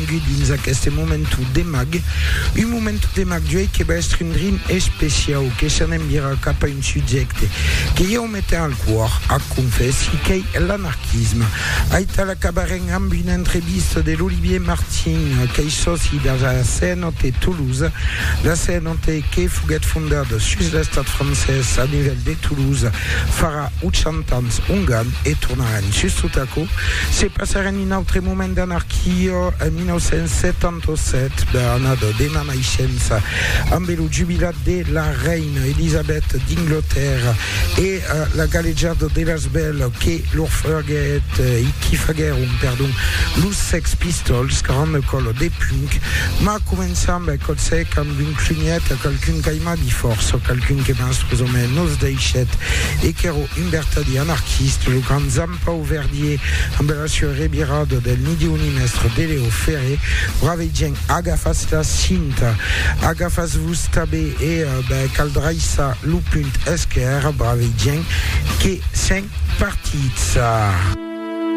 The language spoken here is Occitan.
Benvengut dins aqueste momentu de mag, un momentu de mag d'uei que va èstre un drin especiau, que s'an envirar cap a un subjècte que ieu metem al còr, ac confèssi, qu'ei l'anarquisme. Aital acabarem amb una entrevista de l'Olivier Martin, qu'ei sòci de la CNOT Toulouse, la CNOT que foguèt fondada sus l'estat francés a nivèl de Toulouse farà Ochent ans ongan e tornaren sustot aquò, se passaren un autre moment d'anarquia en 1977, bèl annada dema naishença, ambe lo jubilat de la reina Elisabèth d'Inglotèrra e la galejada de las bèls que lor faguèt e qui faguèron, perdon, los Sex Pistols, granda còla de punk, mas començam, bèl còp sec, amb un clunièt a qualqu'un qu'aiman. Agi fòrça o qualqu'un que mens pus o mens nos deishèt e qu'èro un vertadier anarquista, lo grand Zampau Verdier, amb la sua revirada del ni Diu ni mèstre de Leo Ferré, brave gent, agafatz la cinta, agafatz-vos tabé e ben cal draissar lo punt esquèrre, brave gent, que sèm partits.